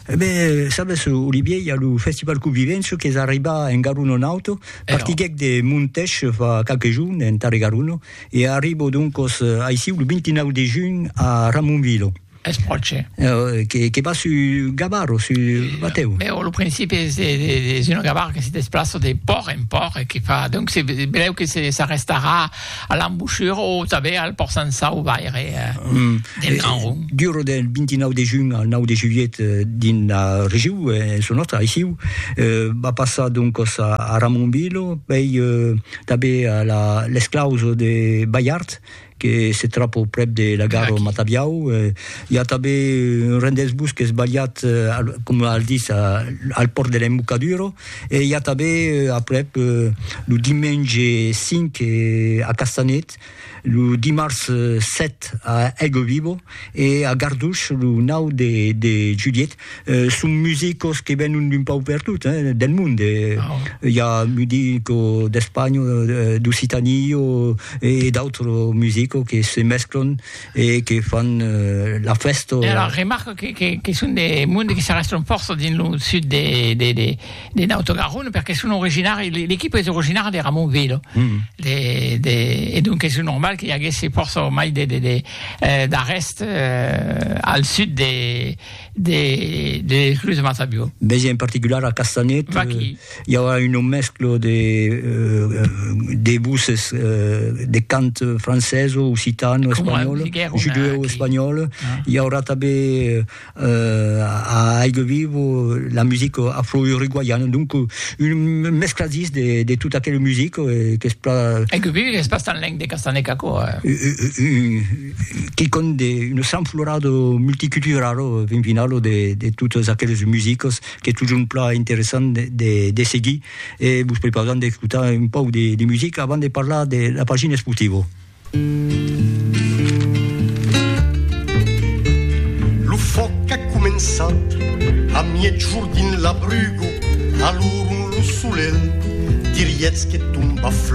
Ebènh, sabes, Olivier, i a lo Festival Covivenço qu'es arribat en Garuno Nauto, partiguèc de Montèch fa qualques jorns, en Tarre Garuno, e arribo doncos aicí lo 29 de junh a Ramonvilo. Es pròche. Que vas su Gavaro, su batèu? Bèu, a lo principi es un Gavaro que se desplaça de pòrt en pòrt e que fa, donc, se belèu que s'arrestarà, A l'embochura o tanben al pòrt Sansau vaire del Gran Ron. Dura del 29 de junh al 9 de julhet dins la regiu, en çò nòstre aissiu, va passar doncas a Ramonville, pei tanben a l'esclaus de Balhard que se tròba prèp de la gara de Matabiau, i a tanben un rendèsbus qu'es balhat, coma al ditz, al pòrt de l'Embocadura, E i a tanben aprèp lo dimenge 5 a Castanet, lo dimars 7 a Aiguevivo e a Garduch lo 9 de julhet. Son musicos que venon d'un pauc pertot, del mond. I a musico d'Espanha, d'Occitània e d'autres musicos que se mesclan. e que fan la fèsta. E alara remarco que son de monde que s'arrèstan fòrça dins lo sud de Naut Garonne perque son originari, l'equipa es originara de Ramonville e donc es normal que i aguèsse fòrça mai d'arrèst al sud de l'esclusa Mata Biò. Mès en particular a Castanet. I aurà una mescla de de voces de cant francés, occitan, espanhòl, judeèu espanhòl, i aurà tanben a Aigle Viu la musica afro-uruguaiana, donc un mescladís de tota aquela musica qu'es plan... Aigle Viu es pas tan lenc de Castanhèc aquò, quicòm de una sanflorada multiculturala fin finala de totas aquelas musicas. qu'es totjorn plan interessant de seguir e vos prepausam d'escotar un pauc de musica avant de parlar de la pagina Sportivo. Lo fòc a començat a miègjorn dins la bruga, alorn lo solelh dirietz que tomba flòc.